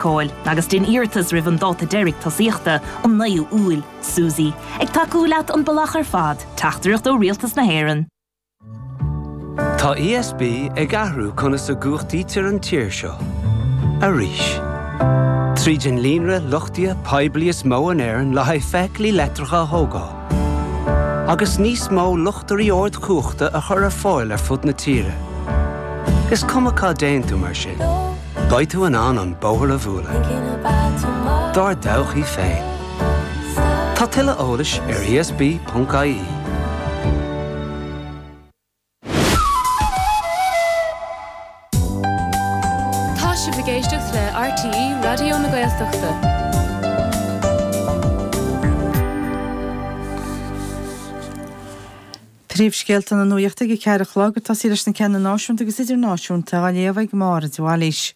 feiceáil agus déan iarratas roimh an dáta deiridh tosaíochta, an 9ú Iúil. SUSI, ag tacú leat an bealach ar fad. Teachtaireacht ó Rialtas na hÉireann. Tá ESB ag athrú conas a gcumhachtaítear an tír seo. Arís. Tríd an líonra luchtaithe poiblí is mó in Éirinn le haghaidh feithiclí leictreacha a thógáil, agus níos mó luchtairí ardchumhachta a chur ar fáil ar fud na tíre, is cuma cá dtéann tú mar sin, Beidh tú in ann an bóthar a bhualadh dár dtodhchaí féin. Tá tuilleadh eolais ar ESB.ie. Tá sibh ag éisteacht le RTÉ Raidió na Gaeltachta. Príomhscéalta na Nuaíochta ag a ceathair a chlog, ag tosaí leis na ceanna náisiúnta agus idirnáisiúnta á léamh ag Máire de Bhailís.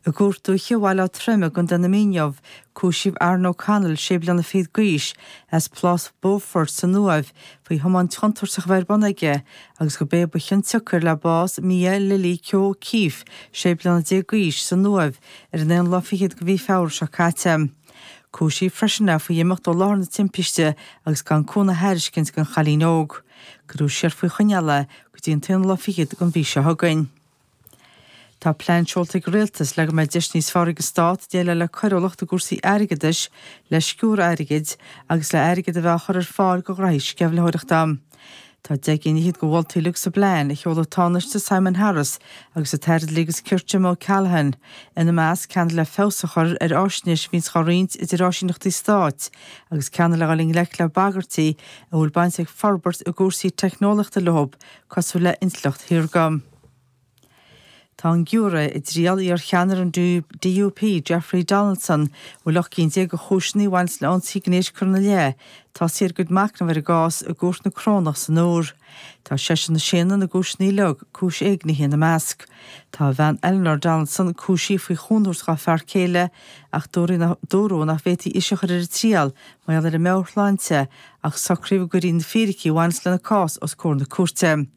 I gCúirt Dúiche Bhaile Átha Troim i gContae na Mí inniu, cúisíodh Aaron O'Connell, sé bliana fichead d'aois, as Plás Beaufort san Uaimh faoi thiomáint chontúirteach a bheith ar bun aige agus gurb é ba chionsiocair le bás Mia Lily Keogh O'Keeffe, sé bliana déag d'aois, san Uaimh ar an aon lá fichead de mhí Feabhra seo caite. Cúisíodh freisin é faoi imeacht ó láthair na timpiste agus gan cúnamh a thairiscint don chailín óg. Cuireadh siar faoi choinneáil é go dtí an t-aonú lá fichead den mhí seo chugainn. Tá plean seolta ag an Rialtas le go mbeidh deis níos fearr ag an Stát déileáil le coiriúlacht i gcúrsaí airgeadais, le sciúradh airgid, agus le hairgead a bheith á chur ar fáil do ghraithí sceimhlitheoireachta. Tá deich gcinn fhichead de mholtaí uilig sa bplean a sheol an Tánaiste Simon Harris agus an tAire Dlí agus Cirt Jim O'Callaghan, ina measc, ceann le feabhas a chur ar fháisnéis a bhíonns dhá roinnt idir áisíneachtaí stáit agus ceann le dhul i ngleic le bagairtí a bhfuil baint ag forbairt i gcúrsaí teicneolaíochta leo cosúil le intleacht shaorga. Tá an giúiré i dtriail iarcheannaire an DUP, Jeffrey Donaldson, a bhfuil ocht gcinn déag de chúiseanna a bhaineanns le ionsaí gnéis curtha ina leith, tosaithe ar a gcuid macnamh ar an gcás i gCúirt na Corónach san Iúr. Tá seisean ag séanadh na gcúiseanna uilig, cúis éignithe ina measc. Tá a bhean Eleanor Donaldson cúisithe faoi chúnamh a thabhairt dhá fear céile ach dúradh nach bhféadfaí ise a chur ar a triail mar gheall ar a meabhairshláinte ach socraíodh go gcuirfí na fíricí a bhaineas lena cás os comhair na cúirte.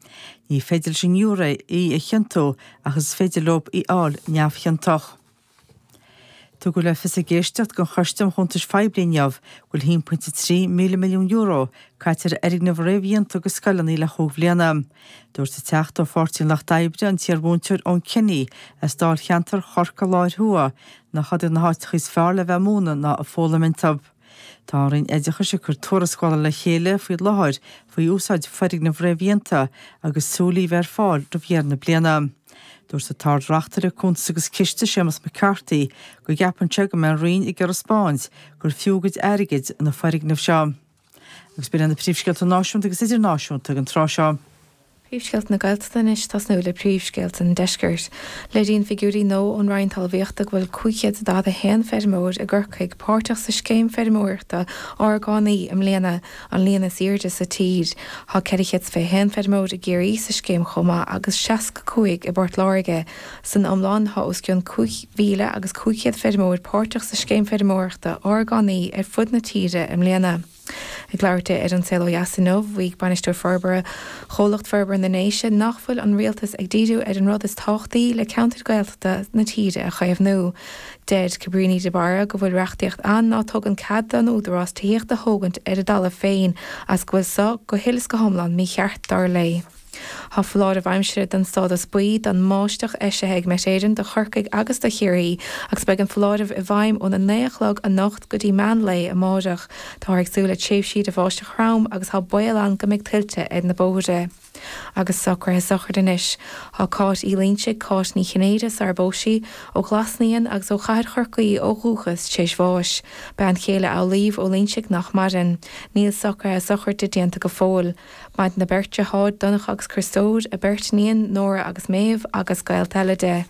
Ní féidir leis an ngiúiré í a chiontú ach is féidir leo í a fháil neamhchiontach. Tugadh le fios ag éisteacht den Choiste um Chuntais Phoiblí inniu go bhfuil €1.3 míle-milliún caite ar fhoirgnimh réamhdhéanta do scoileanna le chúig bhliana. Dúirt an Teachta ó Pháirtí an Lucht Oibre, an t-iar-mhúinteoir Eoghan Kenny as dáilcheantar Chorcaí Lár Thuaidh, nach iad na háiteacha is fearr le bheith ag múineadh ná ag foghlaim iontu. Tá an Roinn Oideachais ag cur tuarascála le chéile faoi láthair faoi úsáid foirgneamh réamhdhéanta agus súil í bheith ar fáil roimh dheireadh na bliana. Dúirt an tArd-Reachtaire Cuntas agus Ciste, Séamus McCarthy, go gceapann sé go mbeidh an Roinn ag iarraidh a thaispeáint gur fiú a gcuid airgid na foirgnimh seo. Agus b'in iad na príomhscéalta náisiúnta agus idirnáisiúnta ag an tráth seo. Príomhscéalta na Gaeltachta anois, tosnú le príomhscéalta an Deiscirt. Léiríonn figiúirí nua ón Roinn Talmhaíochta go bhfuil 541 feirmeoir i gCorcaigh páirteach sa scéim feirmeoireachta orgánaí i mbliana, an líon is airde sa tír. Tá 421 feirmeoir i gCiarraí sa scéim chomh maith agus 65 i bPort Láirge. San iomlán, tá os cionn 5,500 feirmeoir páirteach sa scéim feirmeoireachta orgánaí ar fud na tíre i mbliana. Ag labhairt di ar An Saol Ó Dheas inniu, mhaígh Bainisteoir Forbartha Chomhlucht Forbartha na nDéise nach bhfuil an Rialtas ag díriú ar an rud is tábhachtaí le ceantair Gaeltachta na tíre a chaomhnú. Deir Cabríní de Barra go bhfuil reachtaíocht ann ná tugann cead don Údarás tithíocht a thógaint ar a dtalamh féin agus go bhfuil seo go huile is go hiomlán mícheart, dar léi. Tá foláireamh aimsire den stádas buí don mbáisteach eisithe ag Met Éireann do Chorcaigh agus do Chiarraí agus beidh an foláireamh i bhfeidhm óna naoi a chlog anocht go dtí meán lae amárach. Táthar ag súil le tréimhsí de bháisteach throm agus tá baol ann go mbeidh tuilte ar na bóithre. Agus socraithe sochraide anois. Tá Cáit Uí Loingsigh, Cáit Ní Chinnéide, sara bpós sí, ó Ghlas Naíon agus ó chathair Chorcaí ó dhúchas, tréis bháis. Bean chéile Amhlaoibh Ó Loingsigh nach maireann. Níl socraithe sochraide déanta go fóill. Maireann a beirt deartháir, Donncha agus Criostóir, a beirt iníon, Nóra agus Méabh, agus gaolta eile di.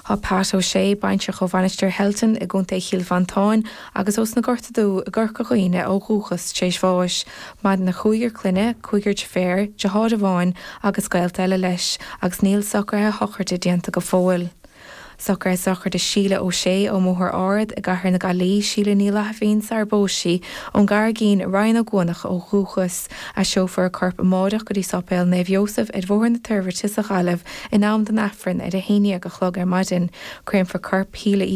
Tá Pat O'Shea, baintreach ó Mhainistir Shelton i gContae Chill Mhantáin agus ó sna Gorta Dubha i gCorca Dhuibhne ó dhúchas, tar éis bháis. Maireann a chúigear clainne, cúigear deirféar, deartháir amháin agus gaolta eile leis, agus níl socraithe sochraide déanta go fóill. Socraithe sochraide Síle Ó Sé ón mBóthar Ard i gcathair na Gaillí, Síle Ní Fhlaithimhín sara bpós sí ón gCarraigín, Rinn Ó gCuanach ó dhúchas. Aistreofar a corp amáireach go dtí Sáipéal Naomh Iósaf ar Bhóthar na Toirbhirte sa Ghaillimh in am don Aifreann ar a haon dhéag a chlog ar maidin. Créamfar corp Shíle Uí